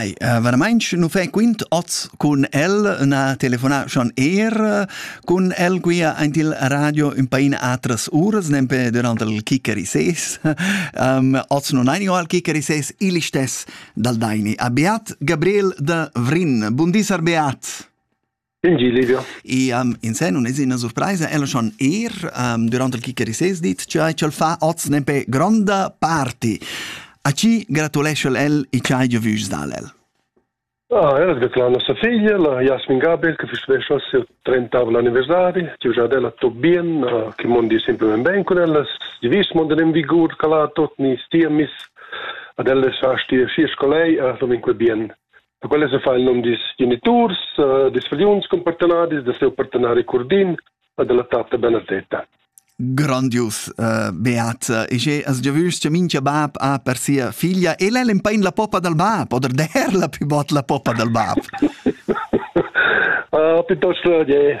Hey, äh, veramente non fai quint oz con el una telefonata schon er con el qui in il radio un pain atras uras nempe durante il kicker i ses um, oz non hai al kicker i ses il stes dal daini abbiat Gabriel de Vrin buondis abbiat In gi liber. E um, in sen un es ina surpraisa, ella schon er um, durant il Kicherisés dit, cioè ch'el fa oz nempe gronda party. A chi gratulesce el e c'hai già vus dal el? Ah, ella gratula a nostra figlia, la Jasmin Gabriel, che festeggia il suo 30 anniversario, che già della Tobien, uh, che mondi sempre ben ben con ella, di vis mondi in vigur calato, ni stiamis, ad ella sa stia sci scolei, a sominque bien. quella se fa il nom dis geniturs, uh, dis fgliuns cun partenadis, da seu partenari Curdin e della tatta Benedetta. Grandius, uh, Beat. E che as già vüst, minchia bab ha per sia figlia, e lei l'empain la poppa dal bab, oder der la più bot la poppa dal bab. uh, piuttosto, yeah,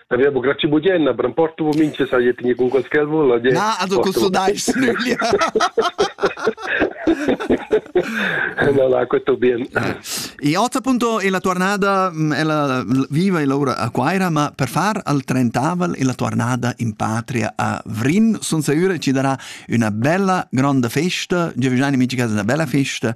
Aveva grazie bugienna, per un porto vo mince sa je tinge con quel che vuol. Na, ado con so dais nüglia. no, la questo bien. E otta appunto e la tornada ella viva e lavora a Quaira, ma per far al trentaval e la tornada in patria a Vrin, son sicura ci darà una bella grande festa, già vicino amici casa una bella festa